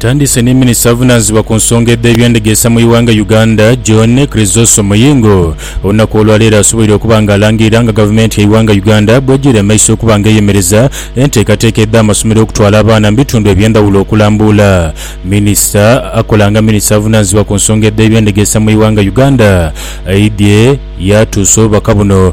Ntandise ni minisita avunaanizibwa ku nsonga edh'ebyendegeesa mu ighanga Uganda, John Chrysosom Muyingo, olunaku olwaleero asoboire okuba nga alangirira nga gavumenti ya ighanga Uganda bwegiri emaiso okuba nga eyemereza enteekateeka edh'amasomero okutwala abaana mu bitundu ebyendhawulo okulambuula minisita akola nga minisita avunaanizibwa ku nsonga edh'ebyendegeesa mu ighanga Uganda aidhye yatuusa obubaka buno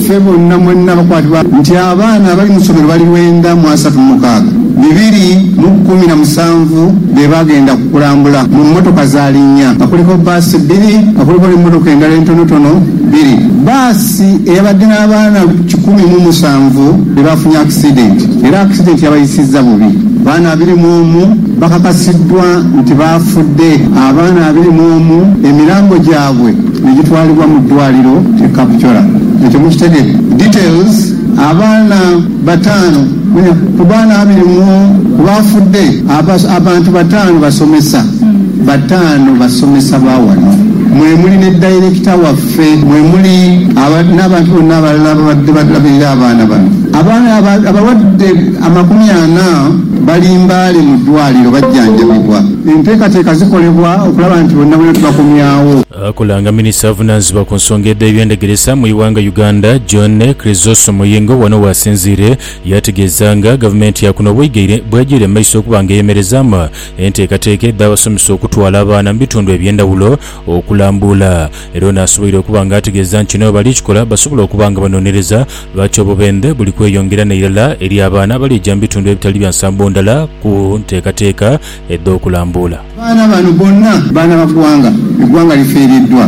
Ffe bonna mwenna abakwatibwa nti abaana abali mu somero bali lwenda mu asatu mu mukaaga, bibiri mu kumi na musanvu be baagenda ku kulambula mu mmotoka za linnya nga kuliko bbaasi bbiri nga kuliko n'emmotoka endala entonotono bbiri. Bbaasi eyabadde n'abaana kikumi mu musanvu be baafunye akisidenti era akisidenti yabayisizza bubi. Abaana abiri mu omu bakakasiddwa nti baafudde. Abaana abiri mu omu emirambo gyabwe ni gitwalibwa mu ddwaliro e Kapchorwa ekyo mukitegere details abaana bataano ku baana abiri mu ku baafudde abantu bataano basomesa bataano basomesa ba wano mwe muli ne dayirekita waffe mwe muli n'abantu bonna abalala ababadde balabirira abaana bano abaana abalwadde amakumi ana bali Mbale mu ddwaliro bajjanjabibwa. Enteekateeka zikolebwa okulaba nti bonnabonna tubakomyawo. Akolanga minisita avunanzibwa ku nsonga edhe by'endegeresa mu ighanga Uganda John Chrysostom Muyingo wano wasinziire yategeeza nga gavumenti ya kuno bwegyeire mu maiso okuba nga eyemerezaamu enteekateeka edha basomesa okutwala abaana mu bitundu ebyendawulo okulambuula Era ono asoboire okuba nga ategeeza nti kino bali kikola basobole okuba nga banonereza lwaki obubendhe buli kweyongera n'eirala eri abaana abalija mu bitundu ebitali bya nsambo ndhala ku nteekateeka edh'okulambuula. Abaana bano bonna baana ba gwanga, egwanga lifiiriddwa.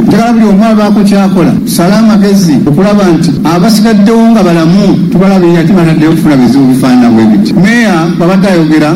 Njagala buli omu abaako kyakola tusale amagezi okulaba nti abasigaddewo nga balamu tubalabirira ate bataddeyo kufuna bizibu bifaanana bwebiti, Meeya bwabadde ayogera.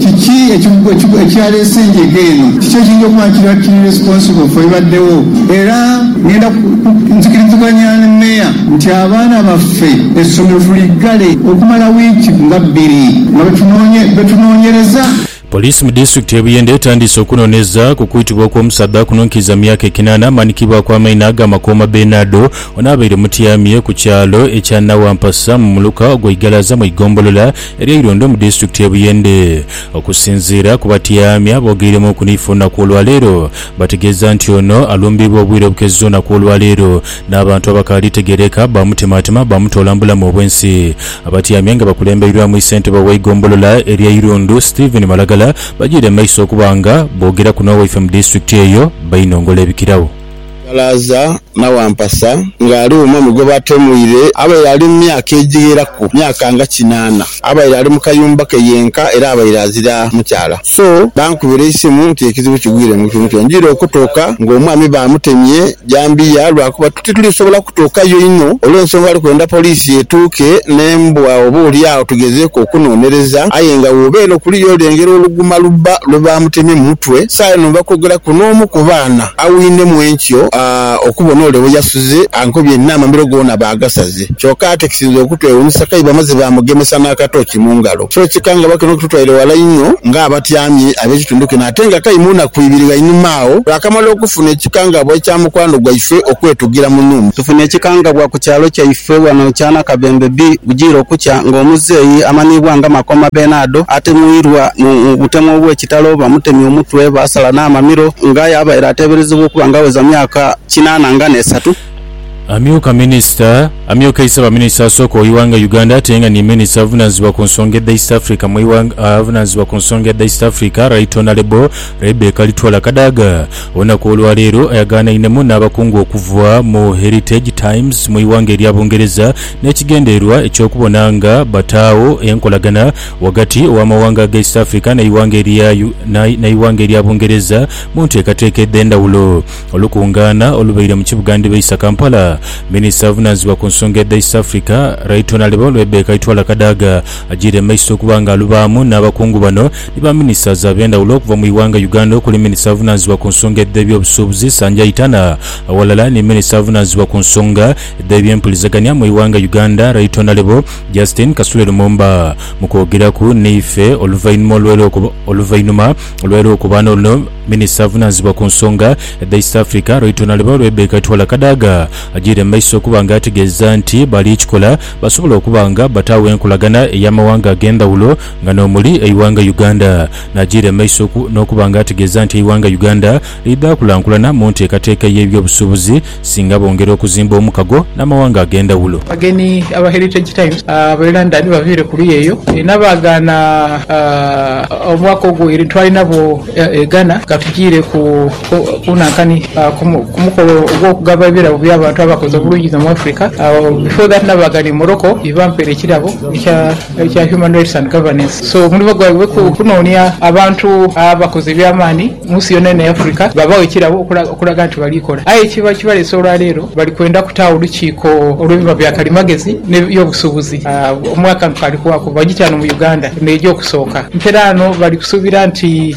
Kiki ekyaleese enjega eno? Kiki ekiyinza okuba nga kiri actually responsible for ebibaddewo? Era ngenda nzikiriziganya ne Mayor nti abaana baffe essomero tuliggale okumala wiiki nga bbiri nga bwetunoonyereza. Poliisi mu disitulikiti y'e Buyende etandiise okunooneza ku kwitibwa okw'omusaadha kuno nkiiza myaka ekinaana amanikibwaku amaina aga Makooma Benardo ono abaire mutyamye ku kyalo ekya Nawampasa mu muluka ogwa Igalaza mu igombolola erya Irondo mu disitulikiti y'e Buyende. Okusinziira ku batyami aboogeiremuuku ni ife olunaku olwaleero, bategeeza nti ono alumbibwa obwire obukeze olunaku olwaleero n'abantu abakaali tegeereka baamutemaatema baamutoola mu bulamu obw'ensi. Abatyami nga bakulembeirwamu Ssentebe w'eigombolola erya Irundu, Stephen Malagala bagyiire mu maiso okuba nga boogeraku n'owaife mu disitulikiti eyo, Bainongola Ebikiragho. Ghalaaza n'awampasa ng'ali uma mu gwe baatemuire abaire ali mu myaka egigheraku myaka nga kinaana. Abaire ali mu kayumba ke yenka era abaire azira mukyala. So bankubira eisimu nti ekizibu kigwire mu kitundu kino njwire okutuuka ng'omwami baamutemye jambiya lwa kuba titulisobola kutuukayo inho olw'ensonga ali kwenda poliisi etuuke n'embwa oba oli agho tugezeeku okunoonereza aye nga w'obeera okuliyo olengera oluguma lubba lwe baamutemye mu mutwe. Saagha eno nva kwogeraku n'omu ku baana. Awinemu enkyo okubona ole bwe yasuze ankobye n'amamiro goona baagasaze. Kyoka ate ekisinze okutwewuunisa kaibamaze baamugemesa n'akatooki mu ngalo. Kiro kikangabwa kino kitutwaire ghala inho ng'abatyami ab'ekitundu kino ate nga kai mu naku ibiri ghainuma agho twakamala okufuna ekikangabwa ekya mukwano gwaife okwetugira mu nhumba. Tufuna ekikangabwa ku kyalo kyaife ghano ekya Nakabembe B bugiire okukya ng'omuzeeyi amanhiibwa nga Makoma Benado atemuirwa mu butemu obw'ekitalo. Ekitalo, baamutemya omutwe, baasala n'amamiro, nga aye abaire ateeberezebwa okuba nga aweza myaka kinaana nga n'esatu. Amyuka Minisita, Amyukeisa Baminisita asooka oighanga Uganda ate nga ni Minisita avunaanizibwa ku nsonga edha East Africa mu ighanga avunaanizibwa ku nsonga edha East Africa Right Honourable Rebecca Litwala Kadaga olunaku olwaleero ayagaanainemu n'abakungu okuva mu Heritage Times mu ighanga erya Bungereza n'ekigendererwa eky'okubona nga bataagho enkolagana ghagati gh'amawanga aga East Africa n'eighanga erya n'eighanga erya Bungereza mu nteekateeka edh'endhawulo. Olukungaana olubaire mu kibuga ndhibaisa Kampala, Minisita avunaanizibwa ku nsonga edha East Africa, Right Honourable Rebecca Itwala Kadaga ajiire mu maiso okuba nga alubaamu n'abakungu bano ni ba Ministers ab'endhawulo okuva mu ighanga Uganda okuli Minisita avunaanizibwa ku nsonga edh'ebyobusuubuzi Sanjay Tana aghalala ni Minisita avunaanizibwa ku nsonga edh'ebyempulizagania mu ighanga Uganda Right Honourable Justine Kasule Lumumba mu kwogeraku naife oluvainuma olw'era oluvainuma olw'era okuba n'oluno minisita avunanzibwa ku nsonga edha East Africa Right Honourable Rebecca Twala Kadaga agiire mu maiso okuba nga ategeeza nti bali kikola basobola okuba nga bataagho enkolagana ey'amawanga ag'endhawulo nga n'omuli eighanga Uganda n'agiira mu maiso n'okuba nga ategeeza nti eighanga Uganda liidhaakulankulana mu nteekateeka y'ebyobusuubuzi singa bongera okuzimba omukago n'amawanga ag'endhawulo. Abagenyi aba Heritage Times ab'e London baviire ku luuyi eyo ena baagaana omwaka ogwo ere twali nabo e Ghana nga tujiire ku Bunankani ku mukolo ogw'okugaba ebirabo by'abantu abakoze obulungi inho mu Africa. Before that nabaagaana e Morocco ye bampeera ekirabo ekya Human Rights and Governance. So omulimu gwabwe kunoonia abantu abakoze eby'amaani. mu nsi yonayona eya Africa babawa ekirabo okulaga nti bali kola. Aye ekibaleese olwaleero bali kwenda kutaagho olukiiko olw'ebiva bya kalimagezi n'eby'obusuubuzi mu akantu kaali kubaaku bajiti ghano mu Uganda eno y'eja okusooka. Nteraano bali kusuubira nti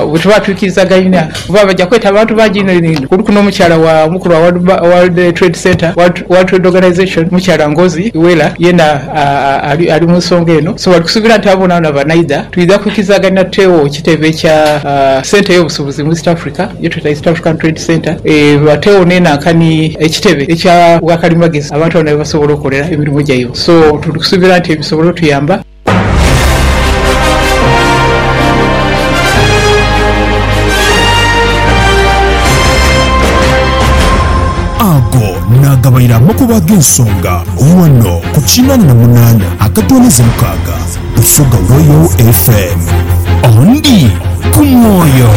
bwe tuba twikirizagainia, kuba baja kweta abantu bangi inho inho inho, kuliku n'omukyala wa mukulu wa World Trade Center, World Trade Organization, omukyala Ngozi Iweala, yeena Ali mu nsonga eno, so bali kusuubira nti abo boonaboona banaidha, twidha kwikirizaganira tuteegho ekitebe kya Centre y'Obusubuzi mu East Africa ye tweta East African Trade Centre, bateegho n'enanka ni ekitebe ekya bwa kalimagezi abantu bona ghe basobola okolera emirimo gyaibwe. So tuli kusuubira nti bisobole otuyamba. Naagabaire amakubo ag'ensonga ghano ku kinaana na munaana akatooneza mukaaga, Busoga Royal FM. Ondi ku mwoyo.